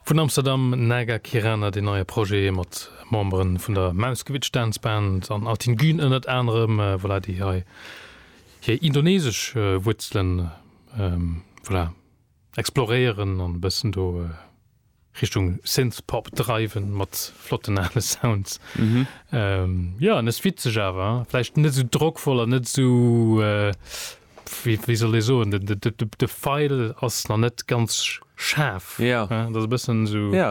Vun Amsterdam, Naga Kirana, deen neie Projet mat Membere vun der Mauskewitsch Dance Band an Altin Gün ënnert anerem, voilà, déi hei hir indonesesch Wuerzelen, voilà, exploréieren an e bëssen do Richtung Synthpop dreiwen mat flotten ale Sounds. Jo, an ass witzeg awer, vläicht net esou drockvoll an net esou, wéi soll ee soen, de Feil ass nach net ganz schaarf. Jo. Dat ass e bëssen esou. Jo.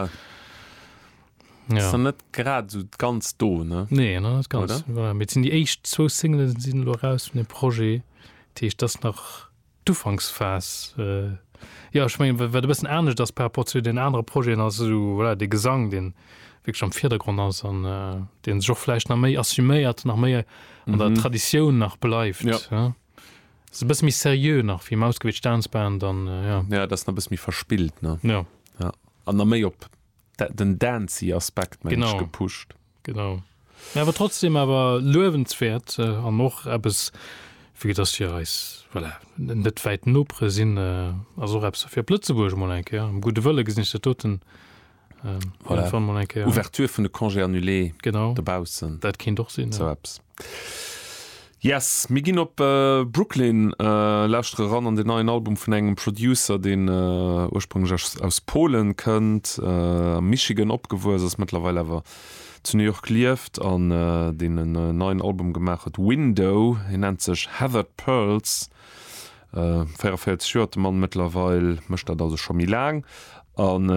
Jo. Ass nach net grad esou ganz do, ne? Nee, nach net ganz. Oder? Voilà, mee et sinn déi éischt zwou Singele sinn elo eraus vun deem Projet. Dat heescht, dat ass nach d'Ufanksphas. Jo, ech mengen, wat e bëssen anescht ass par rapport zu den anere Projeten ass esou, voilà, de Gesang, deen wierklech am Virdergrond ass an dee sech och vläicht nach méi assuméiert, nach méi an der mhm. Traditioun nach bleift. Ja. Ja. Se bëss mi serieux nach wéi Mausgewéit Staansband an äh, ja. ja dat na bëss mi verspillt ne. Ja. Ja. An na méi op den Dancy Aspekt genau gepuscht. Genau. Ja, aber trotzdem aber löwenswert äh, an noch es wie das hier als voilà, net weit nopre sinn äh, also fir Plötzeburg mal enke ja. gute Wëlle gesinn der toten Ouverture vun de Congé annulé dobaussen. Dat kéint och sinn. Esou eppes. Yes, mir ginn op Brooklyn lauschtere ran an den neien Album vun engem Producer, deen ursprünglech aus Polen kënnt, am Michigan opgewuess ass, mëttlerweil awer zu New York lieft an deen en neien Album gemaach huet, Window. Hien nennt sech Heathered Pearls. 44 Joer huet de Mann mëttlerweil, mécht dat also scho méi laang. An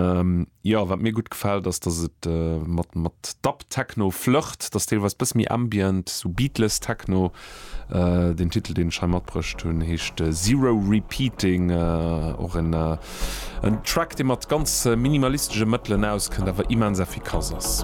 jo, wat mir gutt gefält ass, dass et mat mat Dub-Techno flirtt, dass deelweis bësse méi ambient, esou Beatless-Techno. Deen Titel, deen ech hei matbruecht hunn, heescht Zero Repeating, och en Track, dee mat ganz minimalistesche Mëttelen auskënnt, awer immens effikass ass.